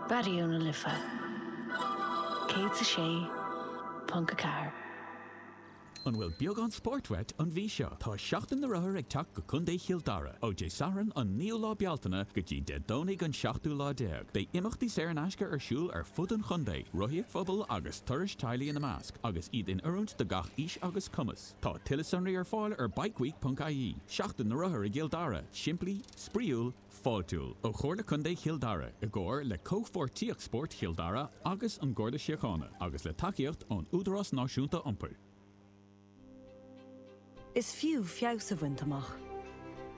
Raidió na Life 106.4. An bhfuil beagán spóirt uait an mhí seo? Tá Seachtain na Rothaíochta ag teacht go Contae Chill Dara ó Dé Sathairn an 9ú lá Bealtaine go dtí Dé Domhnaigh an 7ú lá déag. Beidh imeachtaí saor in aisce ar siúl ar fud an chontae, rothaíocht phobail agus turais teaghlaigh ina measc, agus iad in oiriúint do gach aois agus cumas. Tá tuilleadh sonraí ar fáil ar bikeweek.ie. Seachtain na Rothar i gCill Dara, simplí, spraíúil, fáiltiúil ó Chomhairle Contae Chill Dara i gcomhar le Comhpháirtíocht Spóirt Chill Dara agus an Garda Síochána agus le tacaíocht ón Údarás Náisiúnta Iompair. Is fiú feabhas a bhaint amach.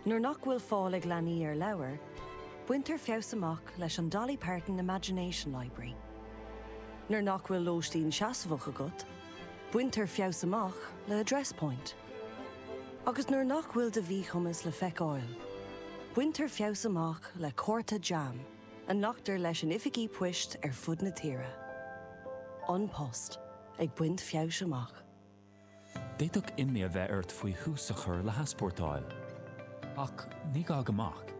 Nuair nach bhfuil fáil ag leanaí ar leabhair, baintear feabhas amach leis an Dolly Parton Imagination Library. Nuair nach bhfuil lóistín seasmhach agat, Baintear feabhas amach le Address Point. Agus nuair nach bhfuil do mhíchumas le feiceáil, baintear feabhas amach le cárta JAM a nglactar leis in oifigí poist ar fud na tíre. An Post ag baint feabhais amach. D'fhéadfadh imní a bheith ort faoi thús a chur le heaspórtáil. Ach ní gá go mbeadh.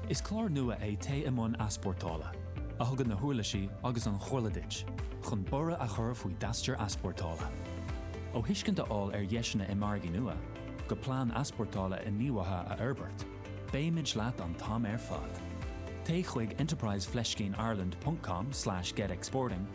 Is clár nua é Téigh i mbun Easpórtála, a thugann na huirlisí agus an chomhairle duit chun borradh a chur faoi d'aistear easpórtála. Ó thuiscint a fháil ar dheiseanna i margaí nua, go plean easpórtála inníomhaithe a fhorbairt, beimid leat an t-am ar fad. Téigh chuig enterprise fleiscín ireland ponc com slash get exporting,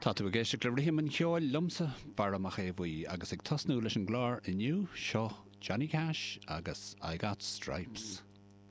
Tá tú ag éisteacht le Rithim an Cheoil liomsa, Barra Mac Aodh Bhuí, agus ag tosnú leis an gclár inniu, seo Johnny Cash agus I Got Stripes.